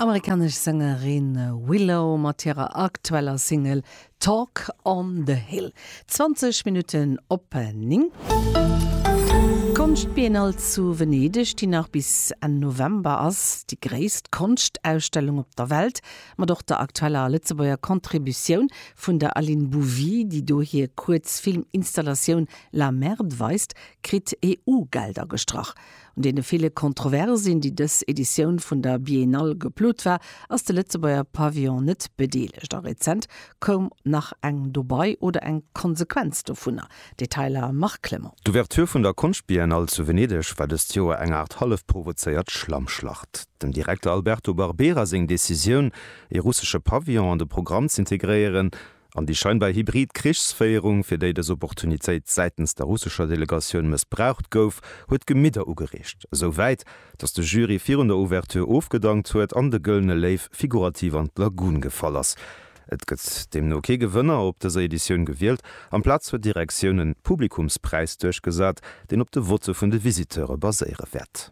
Amerikanesch Sängerin Willow mat hirer aktueller Single Talk on the Hill. 20 Minutten op 9. D'Konschtbiennale zu Venedeg, déi nach bis Enn November ass, déi gréisst Konschtausstellung op der Welt, mat och der aktueller a Lëtzebuerger Contributioun vun der Aline Bouvy, déi do hir Kuerzfilminstallatioun La Merde weist, kritt EU-Gelder gestrach. Un deene ville Kontroversin, déi dës Editioun vun der Biennale geplot war, ass de Lëtzebuerger Pavillon net bedeelegt. A rezent koum nach eng dobai, oder eng Konsequenz dovunner? Detailer Marc Clement. D'Ouverture vun der Konschtbiennale zu Venedeg war dëst Joer eng Aart hallef provozéiert Schlammschlacht. Dem Direkter Alberto Barbera seng Decisioun, ee russesche Pavillon an de Programm z'integréieren, An déi scheinbar hybrid Krichsféierung, fir déi dës Opportunitéit säitens der russescher Delegatioun mëssbraucht gouf, huet d'Gemidder ugereegt, esou wäit, datt de Jury virun der Ouverture ofgedankt huet an de Gëllene Léiw figurativ an d'Lagun gefall ass. Et gëtt deemno kee Gewënner op dëser Editioun gewielt. Amplaz huet d'Direktioun e Publikumspräis duerchgesat, deen op de Votte vun de Visiteure baséiere wäert.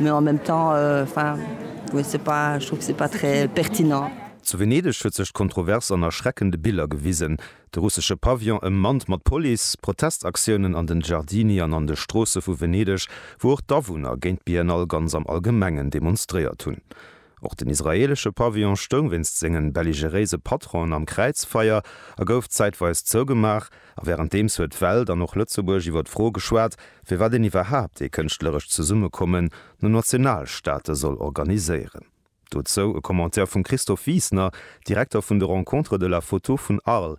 Mais en même temps, enfin, je sais pas, je trouve que c'est pas très pertinent. Zu Venedeg huet sech d'Kontrovers an erschreckende Biller gewisen, de russesche Pavillon ëmmannt mat Police, Protestaktiounen an den Giardini an an de Stroosse vu Venedeg, wou och d'Awunner géint d'Biennale ganz am Allgemengen demonstréiert hunn. Och den israeelesche Pavillon stoung wéinst sengen belligeréise Patronen am Kräizfeier a gouf zäitweis zougemaach. A wärenddeems huet d'Welt an och Lëtzebuerg iwwer d'Fro geschwat, firwat een iwwerhaapt ee kënschtlerescht Zesummekommen no Nationalstaate soll organiséieren. Dozou e Commentaire vum Christophe Wiesner, Direkter vun de Rencontres de la Photo vun Arles,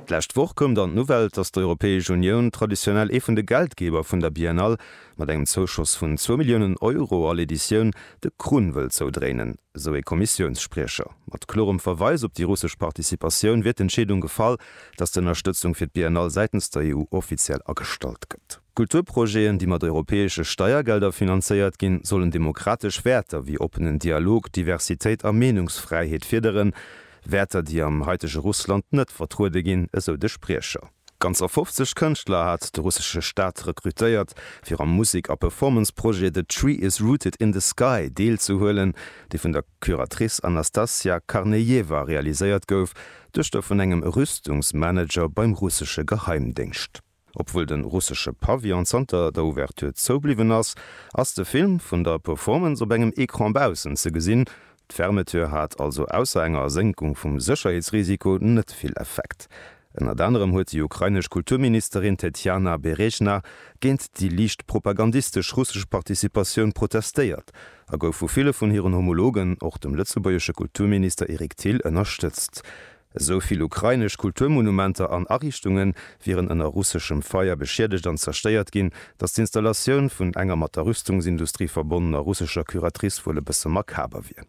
D'lescht Woch koum dann d'Nouvelle, datt d'Europäesch Unioun, traditionell ee vun de Geldgeber vun der Biennale, mat engem Zouschoss vun zwou Milliounen Euro all Editioun de Krunn wëll zoudréinen, sou ee Kommissiounsspriecher. Mat klorem Verweis op déi russesch Participatioun wier d'Entscheedung gefall, datt d'Ënnerstëtzung fir d'Biennale säitens der EU offiziell agestallt gëtt. Kulturprojeten, déi mat europäesche Steiergelder finanzéiert ginn, sollen demokratesch Wäerter wéi oppenen Dialog, Diversitéit a Meenungsfräiheet fiederen, Wäerter, déi am haitege Russland net vertruede ginn, esou de Spriecher. Ganzer 50 Kënschtler hat de russesche Staat rekrutéiert, fir am Musek a Performance-Projet The Tree Is Rooted In The Sky deelzehuelen, dee vun der Curatrice Anastasia Karnejewa realiséiert gouf, Duechter vun engem Rüstungsmanager beim russesche Geheimdéngscht. Obwuel de russesche Pavillon zanter der Ouverture zou bliwwen ass, ass de Film vun der Performance op engem Ecran baussen ze gesinn. D'Fermeture hat also ausser enger Ersénkung vum Sécherheetsrisiko net vill Effekt. Ënnert anerem huet déi ukrainesch Kulturministerin Tetjana Berejna géint déi liicht propagandistesch russesch Participatioun protestéiert a gouf vu ville vun hiren Homologen, och dem lëtzebuergesche Kulturminister Eric Thill, ënnerstëtzt. Esou vill ukrainesch Kulturmonumenter an Ariichtunge wieren ënner russeschem Feier beschiedegt an zerstéiert ginn, datt d'Installatioun vun enger mat der Rüstungsindustrie verbonnener russescher Curatrice wuel e bësse makaber wier.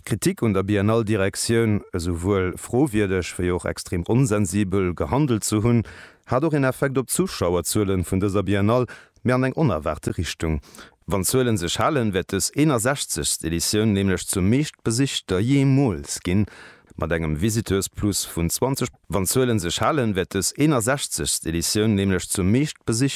D'Kritik un der Biennale-Direktioun, esouwuel frowierdeg wéi och extrem onsensibel gehandelt ze hunn, hat och een Effekt op d'Zuschauerzuele vun dëser Biennale, mee an eng onerwaarte Richtung. Wann d'Zuelen sech halen, wäert dës 61. Editioun nämlech zur meeschtbesichter jeemools ginn, mat engem Visiteursplus vun 20. Wann d'Zuelen sech halen, wäert dës 61. Editioun nämlech zur meeschtbesichter.